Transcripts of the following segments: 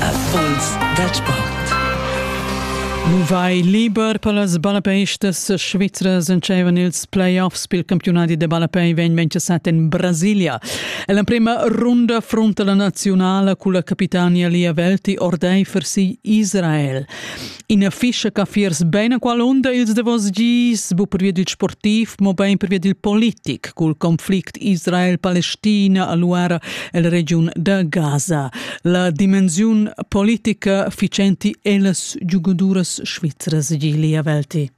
Affols da sport. Nu vai liber per las ballapestas svizras entscheivan ils playoffs pel campiunati da ballapei venvencha sat in Brasilia. E l'emprema runda frunta la naziunala culla capitania Lia Velti ordeifer si Israel. Ina fischa che fiers bene qualunda ils davos gis, bu pervia dil sportiv, mo bein pervia dil politic, cul conflict Israel-Palestina a Luara el regiun da Gaza. La dimensiun politica ficenti ellas giugaduras svizras Gilia Velti.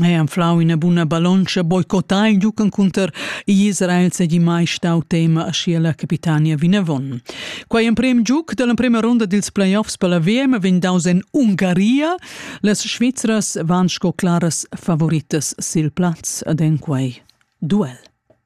Ei anflau ina buna ballontscha boicotà il giug encunter igl Israel segi mai stau tema aschia la capitania vinavon. Quei emprem giug dall'emprema ronda dils playoffs per la VM vegn daus en Ungaria. Las Svizras van sco claras favoritas sil plaz ad en quei duel.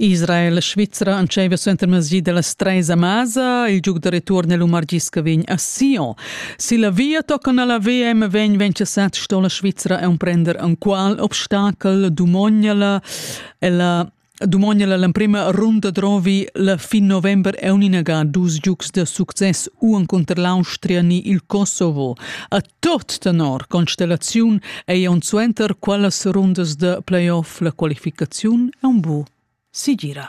Israel e Svizra entscheiva suentermezdi dallas treis a Masa. Il giug da return el Umargiska vegn a Sion. Si la via tocan alla VM vegn ventgasat sto la Svizra emprender enqual obstakel dumognala. Ella Dumognala l'emprema runda drovi la fin november è uninaga dus giugs da success u encunter l'Austria ni il Kosovo. A Tut tenor constellaziun ei aunc suenter quellas rundas da playoff la qualificaziun aunc bu segira.